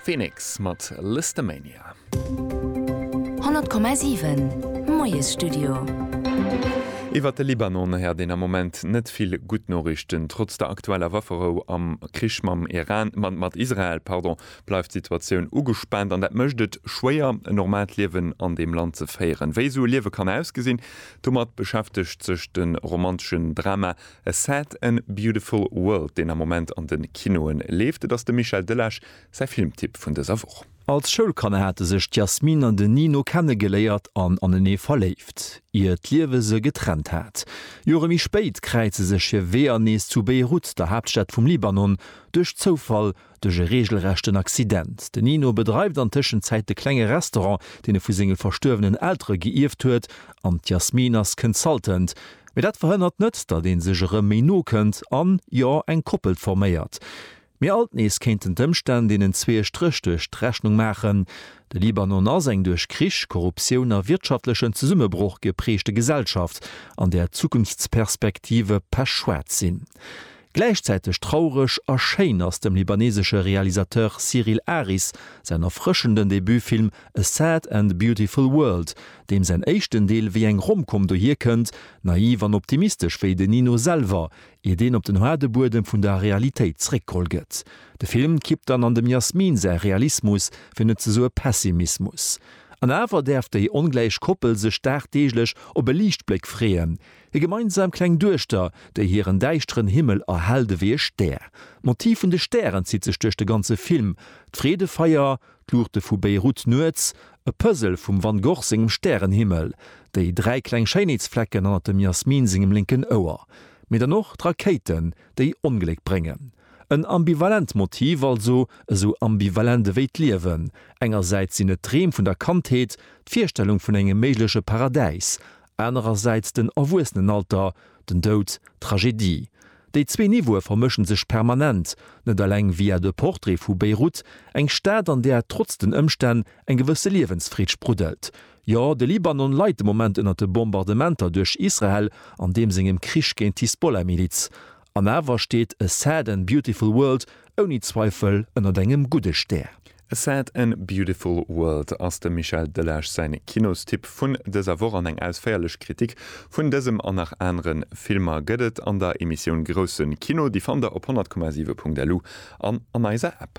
Phoenix mat Listomania. 100,7 Moiesstudio. Iwwert de Libanon héiert een am Moment net vill gutt Noriichten. Trotz der aktueller Wafferou am Krich mam Iran, mat Israel, pardon, bleift d'Situatioun ugespaant an dat mécht et schwéier, en normaalt Liewen an deem Land ze féieren. Wéi esou e Liewe kann ausgesinn, domat beschäftegt sech de romanteschen Drama A Sad and Beautiful World, deen am Moment an de Kinoe leeft. Et ass dem Michel Delage säi Filmtipp vun dëser Woch. Als Schoulkanner hate sech d'Yasmine an den Nino kennegeléiert an anenee verléift, ier d'Liewe se getrennt hat. Jore méi spéit kräize sech hir Weeër nees zu Beirut, der Haaptstad vum Libanon, duerch Zoufall Duerch e reegelrechten Accident. De Nino bedreift an Tëschenzäit de klenge Restaurant, deen e vu senge verstuerwenen Eltere geierft huet, an d'Yasmine ass Consultant. Mee dat verhënnert net, datt ee sech erëm méi no kënnt an, jo, eng Koppel forméiert. Mee alt nees kéinten d'Ëmstänn deenen zwee e Stréch duerch d'Rechnung maachen. De Libanon ass eng duerch Krich, Korruptioun a wirtschaftlechen Zesummebroch gepreegte Gesellschaft, an där d'Zukunftsperspektive pechschwaarz sinn. Gläichzäiteg traureg a schéin ass dem libanesesche Realisateur Cyril Aris säin erfrëschenden Debutfilm A Sad and Beautiful World, deem säin éischten Deel wéi eng Rom-Com dohier kënnt, naiv an optimistesch wéi den Nino selwer, iert een op den haarde Buedem vun der Realitéit zréckgeholl gëtt. De Film kippt dann an dem Yasmine säi Realismus, fir net ze soe Pessimismus. An awer däerf déi ongläich Koppel sech dagdeeglech op e Liichtbléck freeën, Hir gemeinsam kleng Duechter, déi hiren däischteren Himmel erhellt ewéi e Stär. D'Motiv vun de Stären zitt sech duerch de ganze Film, d'Freedefeier, d'Luuchte vu Beirut nuets, e Puzzle vum Van Gogh sengem Stärenhimmel, déi dräi kleng Schéinheetsflecken hannert dem Yasmine sengem lénken Ouer, mee dann och d'Rakéiten, déi Ongléck bréngen. En ambivalent Motiv also, esou ambivalent ewéi d'Liewen. Engersäits sinn et d'Dreem vun der Kandheet, d'Virstellung vun engem méigleche Paradäis, Anerersäits den Erwuessenenalter, den Doud, d'Tragedie. Déi zwee Niveaue vermëschen sech permanent, net eleng via de Portrait vu Beyrouth, eng Stad an där trotz den Ëmstänn eng gewësse Liewensfreed spruddelt. Jo, de Libanon leit de Moment ënner de Bombardementer duerch Israel an deem sengem Krich géint d'Hisbollah-Miliz. An awer steet A Sad and Beautiful World ouni Zweifel ënnert engem gudde Stär. A Sad and Beautiful World ass dem Michel Delage säin Kinostipp vun dëser Woch an eng ausféierlech Kritik vun dësem an nach aneren Filmer gëtt et an der Emissioun Groussen Kino. Déi fannt der op 100,7.lu an an eiser App.